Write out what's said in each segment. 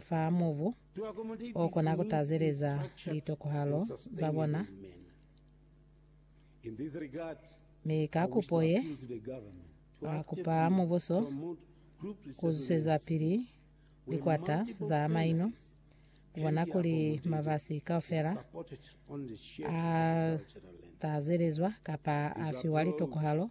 fa mubu o kona ku tazeleza litokohalo za bona, mi ka kupo ye, ba kupa mubuso ku zwezapili likwata za maino ku bona kuli mabasi kaufela a tazelezwa kapa a fiwa litokohalo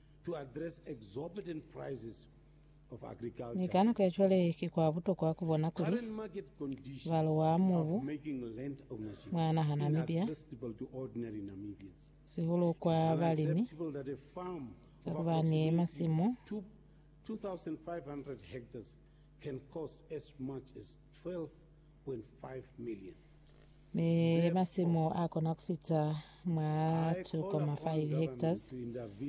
to address exorbitant prices of agriculture. Mi ka nako ya cwale, ki kwa butokwa ku bona kuli Current market conditions balo wa of mubu making land ownership mwa naha Namibia inaccessible to ordinary Namibians. sihulu kwa It's balimi unacceptable that a farm of kakubani approximately masimu two- 2,500 hectares can cost as much as 12.5 million. Mi masimu a kona ku fita mwa 2.5 hectares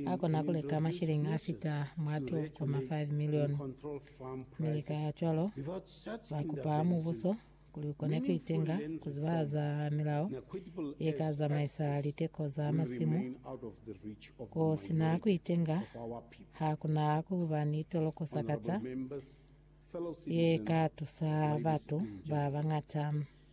a kona ku leka mashilling a fita mwa 12.5 million. Mi kacwalo, ba kupa Mubuso kuli u kone ku itenga ku zibahaza milao ye ka zamaisa liteko za masimu. Ku si na ku itenga, ha ku na ku ba ni toloko sakata ye ka tusa batu ba bañata.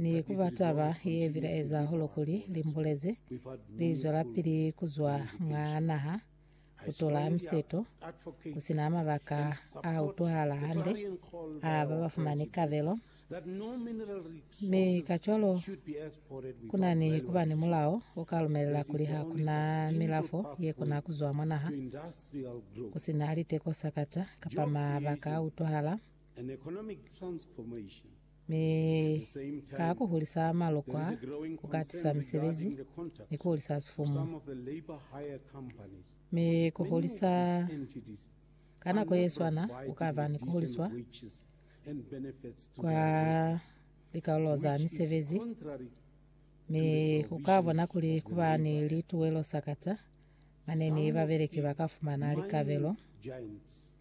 Ni ku ba taba ye bilaeza hahulu kuli limbulezi li zwelapili ku zwa mwa naha, ku tola miseto ku si na mabaka a utwahala hande a ba ba fumani kabelo, mi kacwalo ku na ni ku ba ni mulao o ka lumelela kuli ha ku na milafo ye kona ku zwa mwa naha ku si na liteko sakata kapa mabaka a utwahala. Mi ka ku hulisa malokwa, ku ka tisa misebezi, ni ku hulisa sifumu. Mi ku hulisa ka nako ye swana ku ka ba ni ku huliswa kwa likalolo za misebezi, mi u ka bona kuli ku ba ni lituwelo sakata mane ni babeleki ba ka fumana likabelo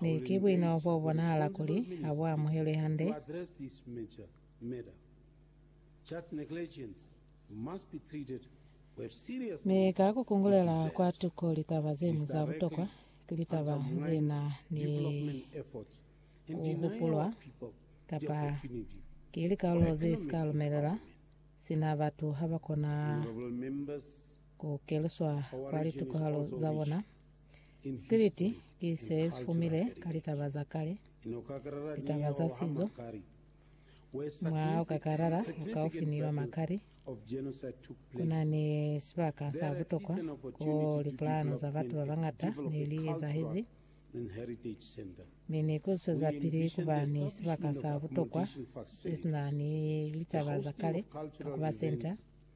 Mi ki buino bo bonahala kuli ha bu amuhelwi hande. Mi ka ku kungulela kwa tuko litaba ze ñwi za butokwa, ki litaba ze na ni ku hupulwa kapa ki likarolo ze si ka lumelela sina batu ha ba kona ku keluswa kwa litukohalo za bona? Stiliti ki se si fumile ka litaba za kale, litaba za sizo. Mwaha o ka kalala o kaufi ni wa Makari, ku na ni sibaka sa butokwa ko lipulano za batu ba bañata ne li ezahezi, mi ni ku zwezapili ku ba ni sibaka sa butokwa se si na ni litaba za kale ka ku ba senta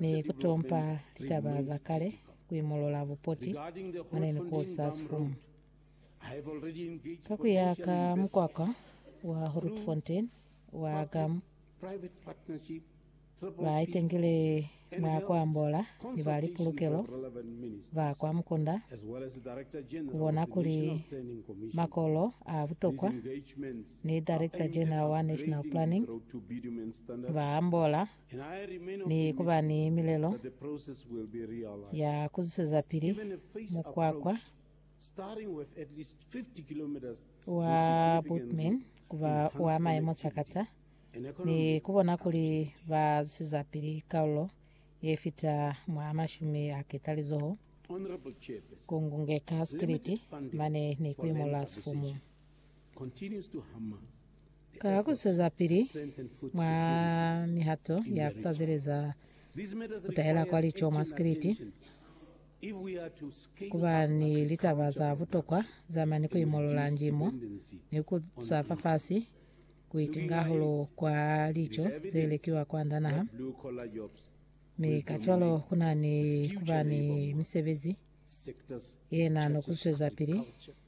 ni ku tompa litaba za kale ku imolola bupoti mwa ne ni kolisa sifumu. Ka ku ya ka mukwakwa wa Grootfontein wa GAM, ba itengile mwa ku ambola ni ba lipulukelo ba kwa Mukunda ku bona kuli makolo a butokwa ni Director-General wa National Planning ba ambola ni ku ba ni milelo ya ku zwezapili mukwakwa wa Bootman ku ba wa maemo sakata ni ku bona kuli ba zwezapili kaulo ye fita mwa mashumi a ketalizoho, ku ngungeka sikiliti mane ni ku imolola sifumu. Ka ku zwezapili mwa mihato ya ku tazeleza ku tahela kwa lico mwa sikiliti, ku ba ni litaba za butokwa za mane ku imolola njimo ni ku sa fafasi ku itinga hahulu kwa lico ze lekiwa kwand'a naha, mi kacwalo ku na ni ku ba ni misebezi ye na no ku zwezapili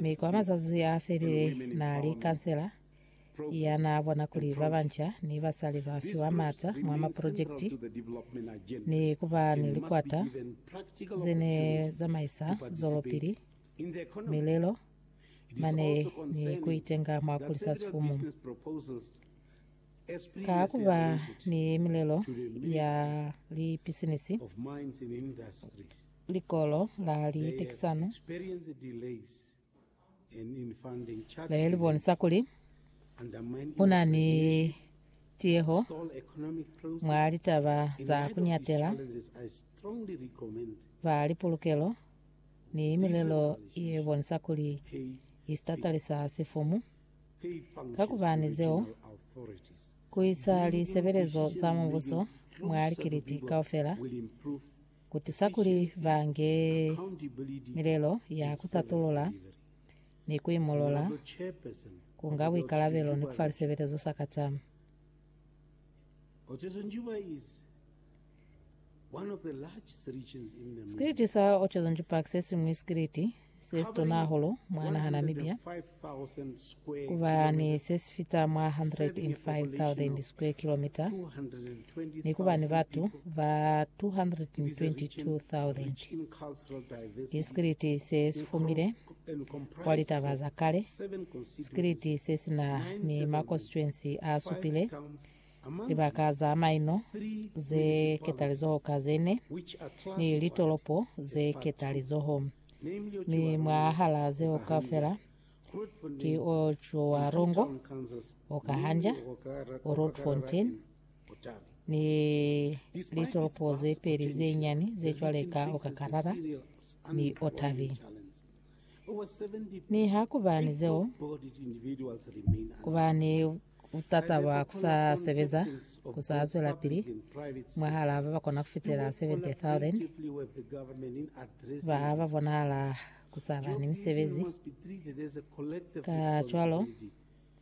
Mi kwa mazazi a felile naa li kansela ya naa bona kuli ba banca ni basali ba fiwa maata mwa maprojekiti ni ku ba ni likwata ze ne zamaisa zwelopili milelo mane ni ku itenga mwa kulisa sifumu. Ka ku ba ni milelo ya lipisinisi, Likolo la litekisano le li bonisa kuli ku na ni tiyeho mwa litaba za ku nyatela ba lipolokelo ni milelo ye bonisa kuli i sitatalisa sifumu, kakubani zeo ku isa lisebelezo za mubuso mwa likiliti kaufela ku tusa kuli ba nge milelo ya ku tatulula ni ku imolola, ku nga buikalabelo ni ku fa lisebelezo sa katama. Sikiliti sa Ochezo Njupa ki se siñwi sikiliti Sesito naa holo mwa naha Namibia ku ba ni se si fita mwa 105,000 square kilometer ni ku ba ni batu ba 222,000. Ki sikiliti se si fumile kwa litaba za kale, sikiliti se si na ni makonstituensi a supile, Libaka za maino ze ketalizoho ka ze ne ni litolopo ze ketalizoho, mi mwahal'a zeo kaufela ki o Tšoarongo, o Kahanja, o Roodfontein, ni litolopo ze peli ze nyani ze cwale ka Okakarara ni Otavi. Niha ku ba ni zeo, ku ba ni butata bwa ku sa sebeza ku sa zwelapili mwahal'a ba ba kona ku fitela 70,000 ba ba bonahala ku sa ba ni misebezi. Kacwalo,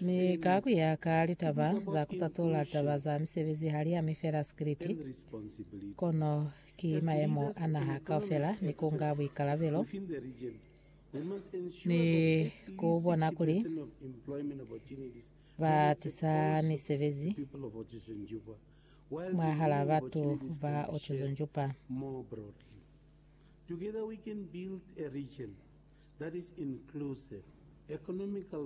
Mi ka ku ya ka litaba za ku tatula taba za misebezi ha li ami fela sikiliti, kono ki mayemo a naha kaufela ni ku nga buikalabelo ni ku bona kuli ba tisa misebezi mwahal'a batu ba Otjiozondjupa.